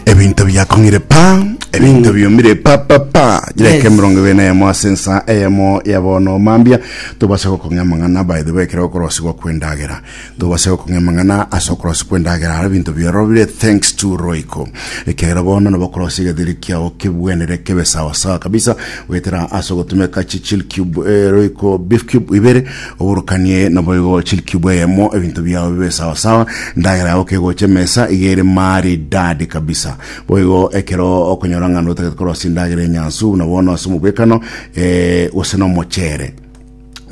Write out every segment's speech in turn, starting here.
ebinto biakong'ire pa ebinto biumire pa pa pa jireke Yes. emerongo ebere na eyemo ase ensa eyemo ya bono mambia tobase gokong'a amang'ana by the way ekero okorosigwa kwendagera tobase gokong'a amang'ana ase okorosi kwendagera ara ebinto biarobire thanks to roiko ekero bono nabo okorosi egetheri kiao kebwenere kebe sawasawa kabisa goetera ase ogotumeka chichil cube eh, roiko beef cube ibere Oborokanie naboigo chilikiubwa eyemo, ebinto biao bibe sawasawa, endagera yao kegocha emesa iga ere maridadi kabisa. Boigo ekero okonyora ng'a notagete korosia endagera enyansu, buna bono ase omobwekano, eh, gose na omochere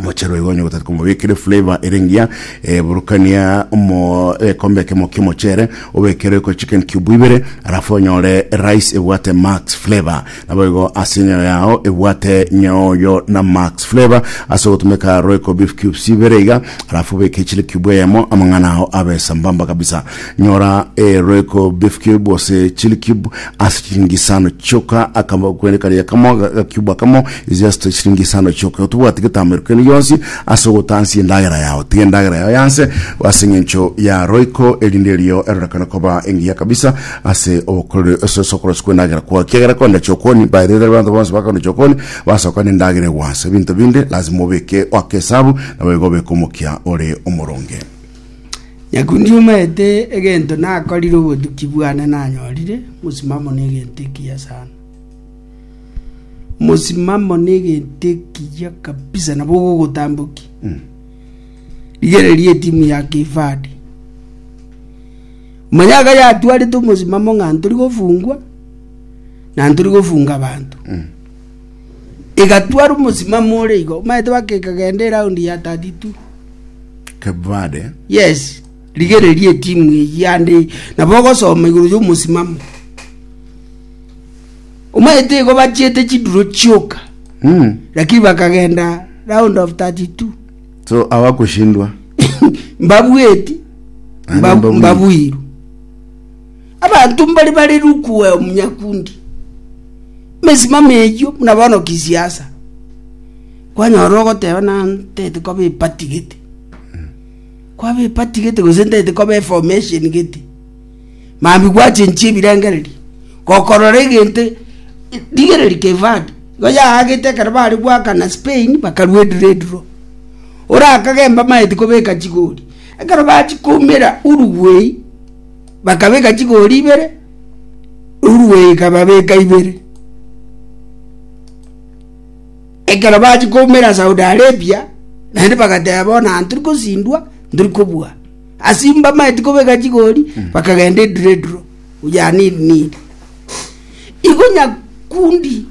mochero igo onye gotati komobekere flavor ere ngiya eh, burukania omo ekombe kemo kiomochere obekere ko chicken cube ibere alafu onyore rice ebwate max flavor Naboigo ase enyayo yao ebwate nyaoyo na max flavor ase ogotumeka royco beef cubes ibere iga alafu obeke chili cube eyemo amang'ana ao abe sambamba kabisa nyora e royco beef cube ose chili cube ase chilingi isano chioka akamo kwende karia kamo ga cube akamo is just chilingi isano chioka otobwati getamero kende gionsi ase ogotansia endagera yao tiga endagera yao yanse ase eng'encho ya royco erinde erio erorekane koba engiya kabisa ase obokoreri ase ase okorosia kw'endagera kwao kiagera kogenda chokoni mbaerere abanto bonsi bakogenda chokoni basoka n'endagera egwansa ebinto binde lazima obeke oake esabu nabo igo obeke omokia ore omoronge Nyaku ndiumaete egento nakorire obotuki bwane nanyorire mosimamo n'egento ekiya sana. Mosimamo n'egento ekiya kabisa nabo ogogotamboki. Rigereria etimu ya Cape Verde. Manya iga yatwarete omosimamo ng'a ntori gofungwa, na ntori gofunga abanto. Egatwara omosimamo ore igo, omanyete baka ekagenda eround ya 32. Cape Verde. Yes, rigereria etimu eyio ande nabo ogosoma igoro y'omosimamo. Omanyete igo bachiete chiduro chioka, Mm. lakini bakagenda round of 32. so abakoshindwa mbabweti, Naende mba- mbabuiru. mbabuiru abanto mbari bare rukua omunyakundi emesimamo eyio buna bono kisiasa kwanyora ogoteba na ntete koba epati gete kwaba epati gete gose ntete koba eformation gete Mambia gwachenchia ebirengererio, gokorora egento rigereria Cape Verde, nigo yaagete ekero bare goakana Spain bakarwa ediro ediro. Orakage mbamaeti kobeka chigori, ekero bachia koumera Uruguay, bakabeka chigori ibere, Uruguay ekababeka ibere. Ekero bachia koumera Saudi Arabia, naende bagateba bono aye ntori kosindwa, ntori kobua. Ase mbamaeti kobeka chigori, bakagenda ediro ediro, yani iri niri. Igo Nyakundi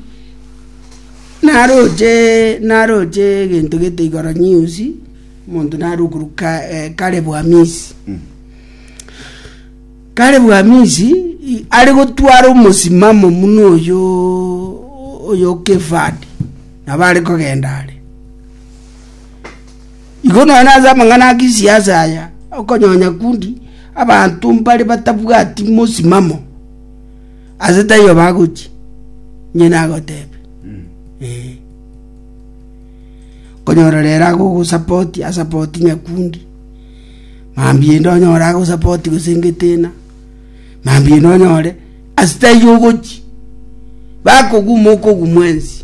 naroche naroche egento gete igoro news, omonto nare okorwa Ka- eh, Caleb Amisi. Caleb Amisi i- are gotwara omosimamo muno oyo oyo Cape Verde, nabo are kogenda are. Igo nonya ase amang'ana a gisiasa aya, okonyonya kundi abanto mbare batabwati mosimamo, aase taiyo bagochia, inche nagoteebia, eh. Okonyora rero agogosapoti, asapoti nyakundi, mambia ende onyore agosapoti gose ngeteena, mambia ende onyore ase taiyo ogochia, bakoguma okogumwa ense.